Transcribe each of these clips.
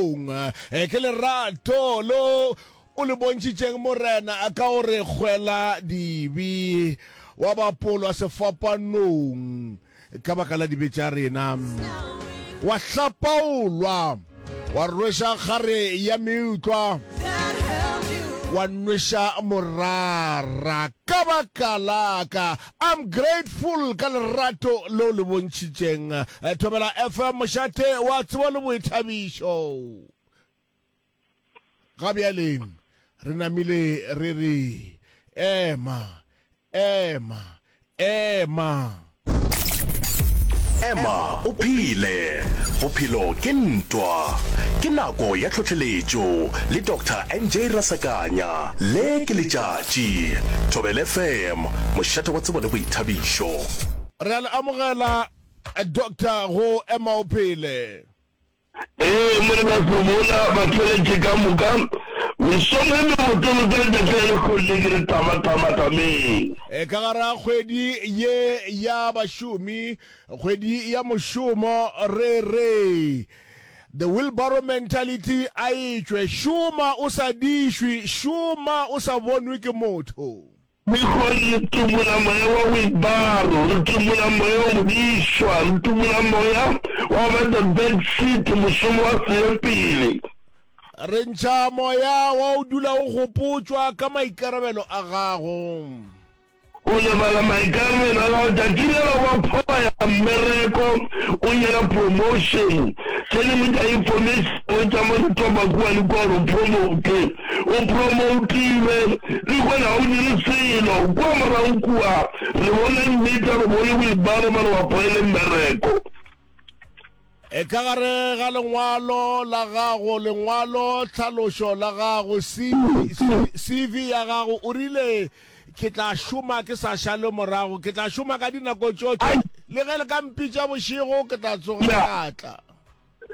Modimong. Ke lerato lo o le bontšitšeng, Morena, ka go re kgwela dibe, wa bapolwa sefapanong ka baka la dibe tša rena, wa hlapaolwa, wa rweša kgare ya meutlwa, wa nweša morara ka baka la ka. I'm grateful ka lerato leo le bontšhitšeng. Thobela FM mošate wa tsebo le boithabišo. Ga bjaleng re namile re re ema ema ema. Ema o phele, bophelo ke ntwa. Ke nako ya tlhohleletšo le Doctor NJ Rasakanya. Le ke letšatši. Thobela FM. mošate wa tsebo le boithabišo. Re a le amogela Doctor go Ema o Phele. Ee, Morena Somola, batheletše ka moka, mesong e mebotolo ka letšatši la lekgodi le ke re tama, tama, tameng. Ee, ka gare ga kgwedi ye ya bašomi, kgwedi ya mošomo, re re The wheelbarrow mentality a e tšwe, šoma o sa dišwi, šoma o sa bonwe ke motho. Mekgweng re tumola moya wa boibaro, re tumola moya wo modišwa, re tumola moya wa go ba the back seat, mošomo wa selepele. Re ntšha moya wa go dula o gopotšwa ka maikarabelo a gago. O lebala maikarabelo a gago, tšatši le la wa phoba ya mmereko, o nyela promotion, tše dingwe tša information tša mo di toba kua le kua gore o promote. O promoutile, le kua ga o dire selo, kua morago kua, re bone nnete, re bone boibalo, ba re wa poele mmereko. E ka gare ga lengwalo la gago, lengwalo tlhalošo la gago, CV ya gago, o rile, Ke tla šoma ke sa šale morago, ke tla šoma ka dinako tšotše, le ge le ka mpitša bošego, ke tla tsoga ka tla.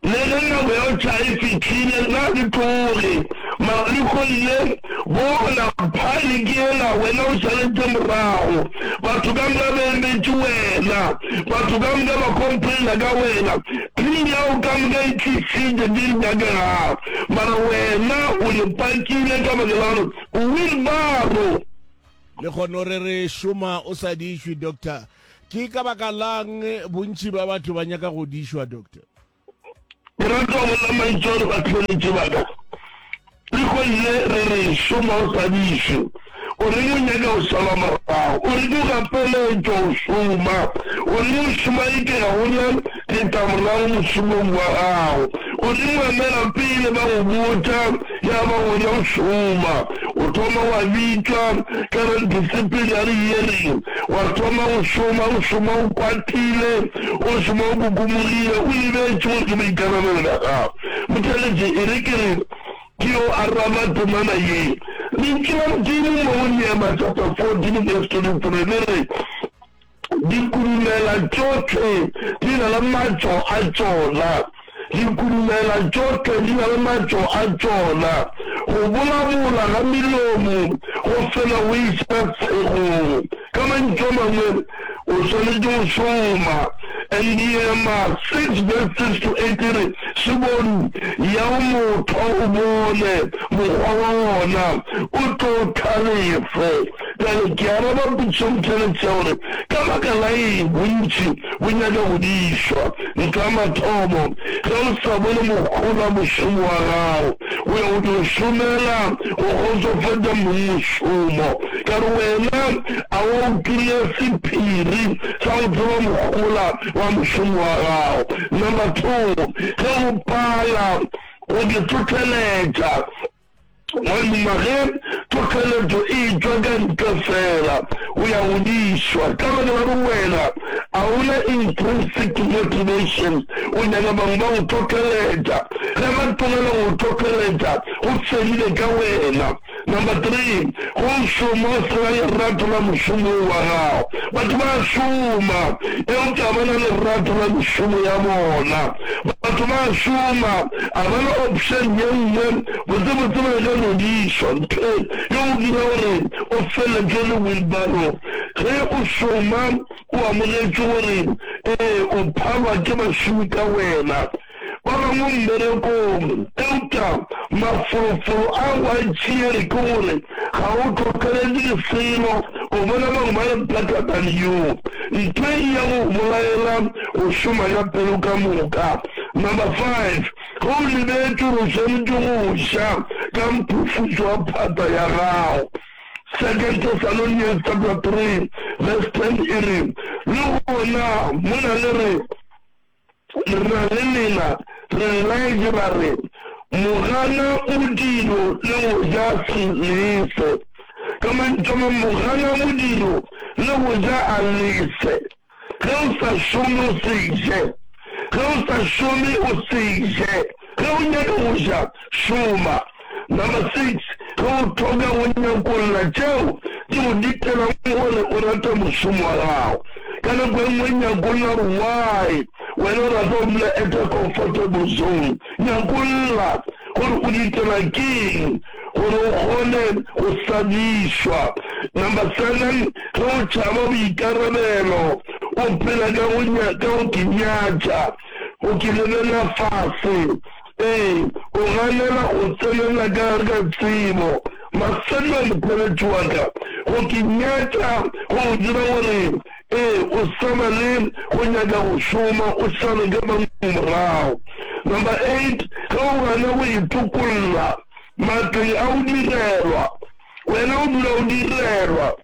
Le ge nako eupša e fihlile, na re tloge Mariko ye? Bona, phaene ke yela, wena o šaletše morago. Batho ka moka ba emetše wena. Batho ka moka ba complaina ka wena. Team ya go ka moka e tlišitše di nyakega, mara wena o le pakile ka baka la gore o wheelbarrow. Le gona o re re šoma o sa di išwe, Doctor. Ke ka baka lang bontši ba batho ba nyaka go di šwa, Doctor? Moratiwa monna Maitšo le batheeletši ba ka, re hwedile re re šo mo o sa di šwe. O reng o nyaka go šala morago? O re ke go gapeletšo go šoma? O reng o šoma eke ga go na le ka morago mošomong wa gago. Godimo emela pele ba go botša, ya ba gona o šoma. O thoma wa bitšwa ka ga disciplinary hearing, wa thoma go šoma, o šoma o kwatile, o šoma o kukumogile, o lebetše gore ke boikarabelo bja gago. Motšheletše, e re ke re ke yo araba temana ye. Lentšu la Modimo mo go Nehemia chapter 14 verse 23 le re, Dikurumela tšohle di na le matšo a tšona. Dikurumela tšohle di na le matšo a tšona. Go bolabola ga melomo go fela go iša segong. Ka mantšu a mangwe, o swanetše go šoma. Endiema 6 verse 6 to 8 e re, Šebong ya go mothwa o bone mokgwa wa wona, o tlo tlhalefe. Bjale ke araba potšong tše le tše gore, Ka baka la eng bontši bo nyaka go di išwa? Ntwa mathomo, ge o sa bone mohola mošomo wa gago, o ya go tlo šomela go kgotsofatša mong mošomo. Ka re wena a wa o kry-a sephiri sa go tseba mohola wa mošomo wa gago? Number two, ge o pala go ke tlhotlheletša, Gomme ge tlhohleletšo e tšwa ka ntle feela, o ya godišwa. Ka baka la gore wena ga o na intrinsic motivation, o nyaka bangwe ba go tlhohleletša. Ge ba tlogela go go tlhohleletša, go fedile ka wena. Number three, go šoma o se na lerato la mošomo wo wa gago. Batho ba a šoma eupša ga ba na lerato la mešomo ya bona. Batho ba a šoma, a ba le option ye nngwe, botsebotse ba ka nyodišwa. Ntho ye o dira gore o feletšwe le wheelbarrow ge o šoma, o amogetše gore ee o phalwa ke bašomi ka wena ba bangwe mmerekong, eupša mafolofolo a go a tšea re ke gore Ga o tlhotlheletše selo go bona bangwe ba le thata ka leyo. Ntho e ya go go bolaela go šoma ga pelo ka moka. Number five, ge o lebetše gore o swanetše go ša ka mphufutšo wa phata ya gago. Second Thessalonians chapter three verse ten e re, Le gona mona le re, Rra le Lena, Rra Elijah ba re, Mogana modiro le go ja se lese. Ka mantšu a mang, mogana modiro le go ja a lese. Ge o sa šome o se je. Ge o sa šome o se je. Ge o nyaka go ja, šoma. Number six, ge o thoka go nyakolla tšeo di go ditelang gore o rate mošomo wa gago, ka nako e nngwe nyakolla gore why wena o rata go dula at a comfortable zone. Nyakolla gore o ditela ke'ng gore o kgone go sadišwa. Number seven, ge o tšhaba boikarabelo, o phela ka go nyatša. O ke lelela fase. Ee, o ganela go tsenela ka gare ga tsebo. Mafelelo a mokweletši wa ka, go ke nyaka go go dira gore, ee, o sa ba le go nyaka go šoma, o šale ka bangwe morago. Number eight, ge o gana go itokolla matleng a go direlwa, wena o dula o direlwa.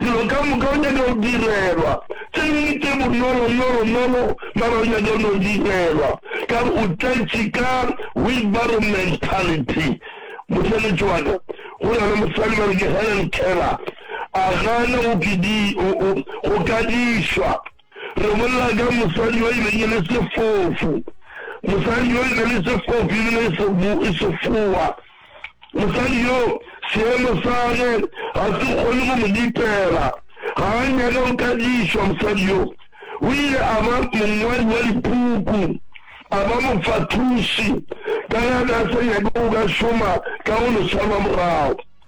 Dilo ka moka o nyaka go direlwa tše dingwe tše bonolo nolo nolo mara o nyaka go no direlwa ka re o tletše ka wheelbarrow mentality. Mosebetsi wa ka go na le mosadi ba re ke Helen Keller a gana go ke di go ka dišwa. Re bolela ka mosadi yo e beng e le sefofu, mosadi yo e be le sefofu e bile e sefoa. Mosadi yo, seemo sa ge ga se kgone go mo dipela, ga a nyake go ka dišwa. Mosadi yo o ile a ba mongwadi wa dipuku, a ba mofathoši, ka ge a be a sa nyake go ka šoma ka go leswa lwa morago.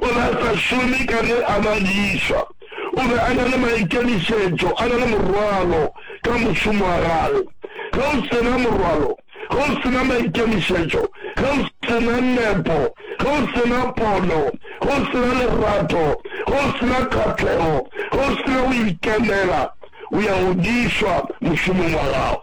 O be a sa šome ka ge a ba lisa. O be a na le maikemišetšo, a na le morwalo ka mošomo wa gagwe. Ge o se na morwalo, ge o se na maikemišetšo, ge o se na nepo, ge o se na pono, ge o se na lerato, ge o se na kgahlego, ge o se na go ikemela, o ya o diswa mošomong wa gago.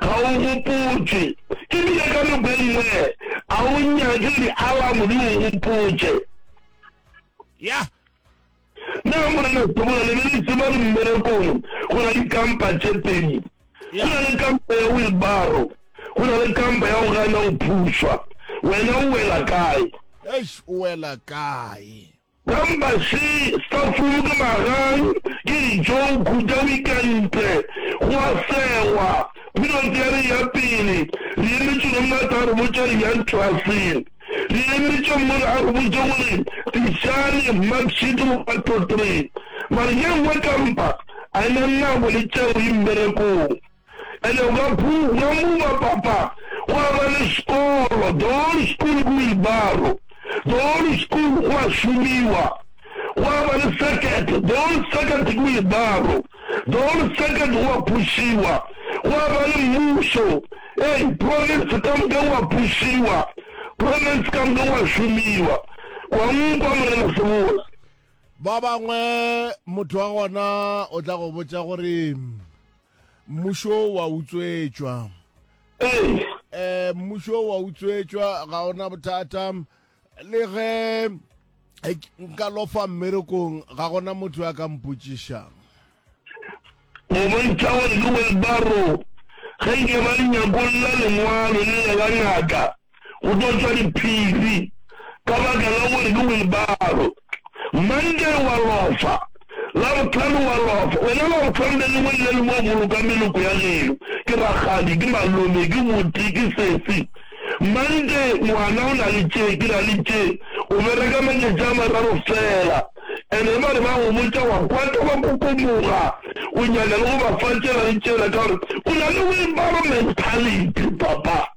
Ga o gopotšwe, e bile ka nako e nngwe ga o nyake dialamo di go gopotše. Ya. Na Morena Sebola le be le tseba gore mmerekong go na le kampa tše pedi? Go na le kampa ya wilbaro, go na le kampa ya go gana go phušwa. Wena o wela kae? Eish, o wela kae? Pampase, stafulu ke magang, ke ditšoukhu tša wikentle, go a segwa, period ya re ya pele, re emetše gore motho a re botše re yang klaseng, re emetše mmola a re botše gore tišane mark sheet one two three, mara ye nngwe kampa a ena nna boletšeo yi mmerekong. And o ka phuma muba papa gwa ba le sekolo, the whole school ke wheelbarrow, the whole school gwa šomiwa, gwa ba le circuit, the whole circuit ke wheelbarrow, the whole circuit gwa phušiwa, gwa ba le mmuso, ei province ka moka gwa phušiwa, province ka moka gwa šomiwa. Kwa nkwa Morena Sebola. Ba bangwe motho wa gona o tla go botša gore Mmušo wa utswetšwa. Ee. Eh, mmušo wa utswetšwa ga ona bothata le ge eh, nka lofa mmerekong ga gona motho ya ka mpotšišang mobontšha wa lewelbaro ge nke ba le nyakolla lengwalo le le la ngaka go tlo tšwa diphiri ka baka la gore ke wilbaro. Monday wa lofa, Labohlano wa lofa, wena Labohlano le lengwe le le lengwe o boloka meloko ya geno, ke rakgadi, ke malome, ke buti, ke sesi. Monday ngwana o na le tše, ke na le tše, o bereka matšatši a mararo fela. And ge ba re ba go botša wa kwata wa kokomoga, o nyaka le go ba fa tšela le tšela ka gore o na le wilbaro mentality, papa.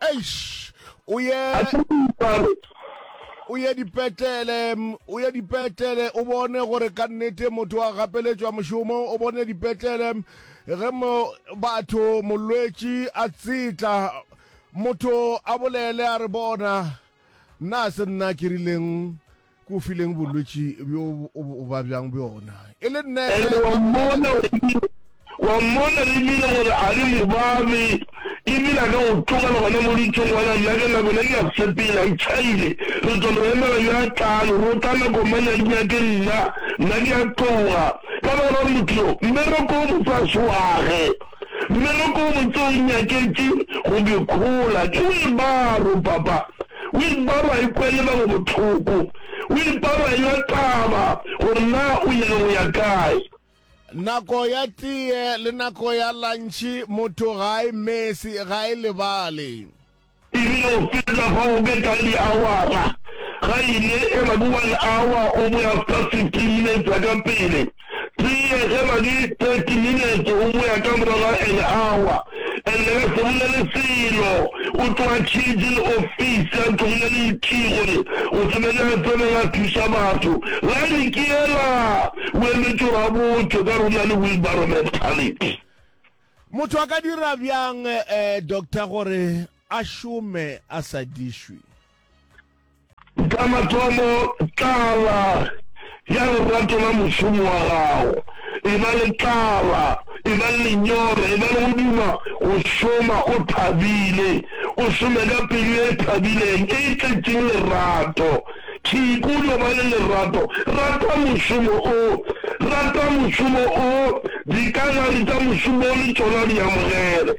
Eish! O ye, o ye dipetlele, o ye dipetlele, o bone gore ka nnete motho a gapeletšwa mošomo, o bone dipetlele ge mo batho molwetši a tsetla, motho a bolele a re bona, na se nna ke rileng? Ke o fileng bolwetši bjo o ba bjang bjona? E le nna ge. Ene wa mmona, o rile, Wa mmona e bile gore a di mo babe, e bile a ka go tlogela gona mo ditšong, ngwana, nna ke nako ne ke ya sepela, e tšhaile. Re tlo mo emela yo a tlago, go tla nako mang ya dinyake nna, nna ke ya tloga. Ka baka la gore motho yo, mmereko wo motse a se wage, mmereko wo motse o nyaketše go bjekhola. Ke o e baro, papa. O ipa ba ikwa e ba go bohloko. O ipa ba ewa taba gore na o ile go ya kae. Nako ya tee le nako ya lantšhi motho ga a e mesi, ga a e lebale. E bile o fetla fa go be ka diawara, ga e ile e ba ke one hour o be after fifteen minutes ka pele. Tee ge na le thirty minutes o boya ka morago ga an hour and le ka se bolele selo o tloga changing office ya tlogile le ikey gore o tsebe ge a tsena ga thuša batho line ke yela o emetše gore a botšwe ka rona le wheelbarrow mentality. Motho a ka dira bjang eh doctor gore a šome a sa dišwi? Ka mathomo, tlala ya lerato la mošomo wa gago e ba le tlala, e ba le lenyora, e ba le go duma go šoma o thabile, o šome ka pelo e thabileng, e tletšeng lerato. Tšhikuluo, ba le lerato, rata mošomo o, rata mošomo o, dikagare tša mošomo o le tšona di amogele.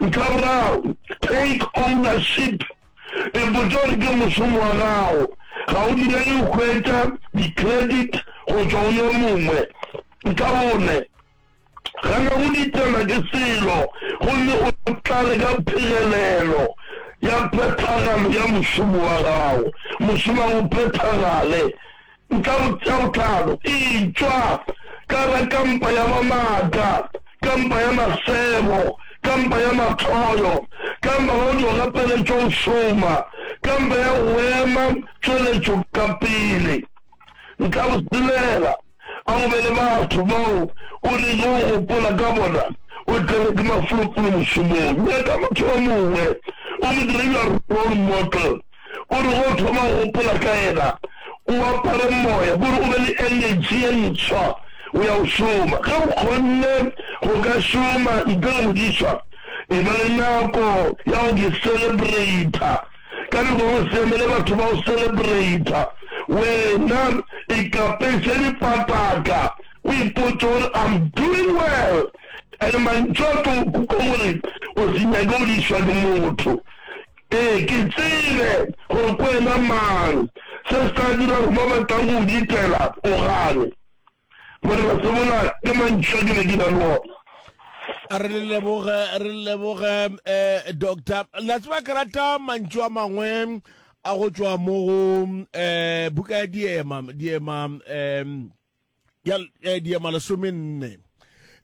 Ntha boraro, take ownership. E botša gore ke mošomo wa gago, ga o direle go hwetša di-credit go tšwa go yo mongwe. Ntha bone, gana go diteelwa ke selo gomme o tlale ka phegelelo ya phethagalo ya mošomo wa gago. Mošomo ga o phethagale. Nka mo tšea botlalo. Etšwa ka la ka mpa ya mamata, ka mpa ya masebo, ka mpa ya mathoyo, ka mpa ba o dio gapeletšwa go šoma, ka mpa ya go ema tšweletšo ka pele. Nka go silela, a go be le batho bao o rile o gopola ka bona, o tlelwe ke mafolofolo mošomong. Nyaka motho yo mongwe, o mo dire your role model. O re ge o thoma go gopola ka yena, o apare moya, bo re o be le energy ye ntswa go ya go šoma. Ge o kgonne go ka šoma ntle le modišwa, e ba le nako ya go ke celebrata. Ka nako go se emele batho ba go celebrata, wena ikapeše dipataka, o ipotše gore I'm doing well. And mantšu a tlo go kuka gore o se nyake go dišwa ke motho. Ee, ke tsebe gore ke wena mang. Se se tla dira gore ba ba tlago go go ditela o gane. Morena, se bola ke mantšu a ke be ke na le ona. Re le leboge, re le leboge, um doctor. La tseba ke rata mantšu a mangwe a go tšwa mo go um buka ya diema, diema um ya eh, diema lesome nne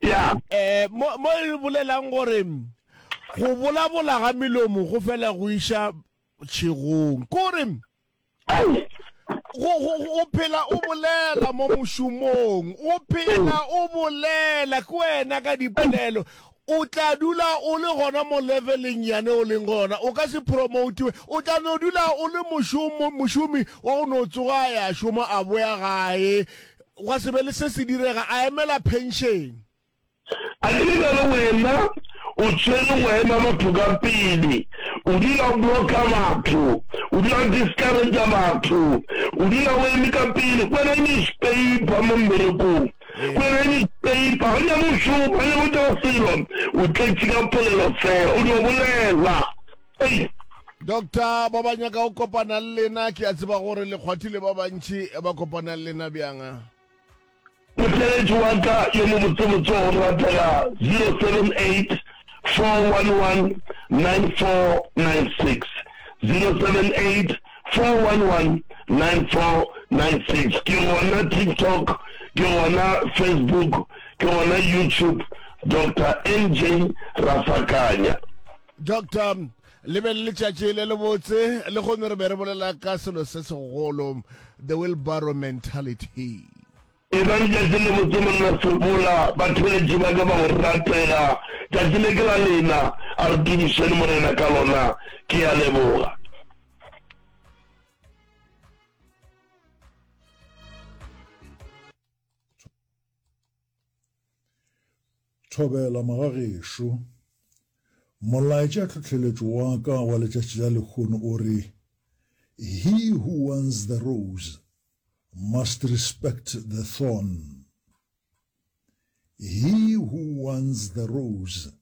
ya eh mo mo e bolelang gore go bolabola ga melomo go fela go iša tšhegong kore ai go go- go- o phela o bolela mo mošomong o phela o bolela ke wena ka dipolelo O tla dula o le gona mo leveleng yane o leng go yona. O ka se promotiwe. O tla no dula o le mošomo, mošomi wa go no tsoga a ya šoma a boya gae, gwa se be le se se direga, a emela pension. A ke nna le wena o tshwere maemo a batho ka pele, o dula o blocka batho, o dula o discourager batho, o dula o eme ka pele, wena newspaper mo mmerekong. Kwereni peipa gomme mo šoma gomme mo tšwa selo o tletše ka polelo fela o dio bolela. Ei. Doctor ba ba nyaka go kopana le lena ke a tseba gore le kgwathile ba bantši ba kopana le lena bjang? Motheeletši wa ka yo mobotsebotse wa go ratega 078 411 9496 078 4119496 ke gona TikTok ke gona Facebook ke gona YouTube Doctor MJ Rafakanya. Doctor le be le letšatši le le botse le kgone re be re bolela ka selo se segolo the wheelbarrow mentality Ebang tšatši le botse monna Segola, batheeletši ba ka ba go ratela, tšatši le ke la lena, a re tumišeni Morena ka lona. Ke a leboga. Thobela magagešo. Molaetša tlhohleletšo wa ka wa letšatši la lehono o re, He who wants the rose Must respect the thorn. He who wants the rose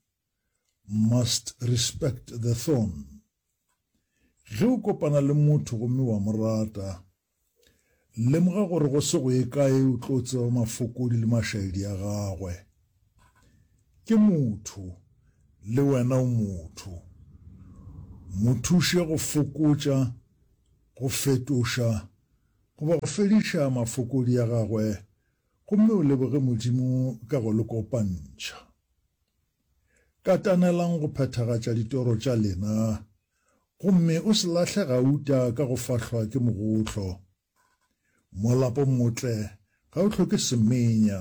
must respect the thorn. Ge o kopana le motho gomme wa mo rata, lemoga gore go se go ye kae o tlo tseba mafokodi le mašaedi a gagwe. Ke motho, le wena o motho. Mo thuše go fokotša Go fetoša, goba go fediša mafokodi a gagwe gomme o leboge Modimo ka go le kopantšha. Katanelang go phethagatša ditoro tša lena gomme o se lahle gauta ka go fahlwa ke mogotlo. Molapo motle ga o hloke semenya,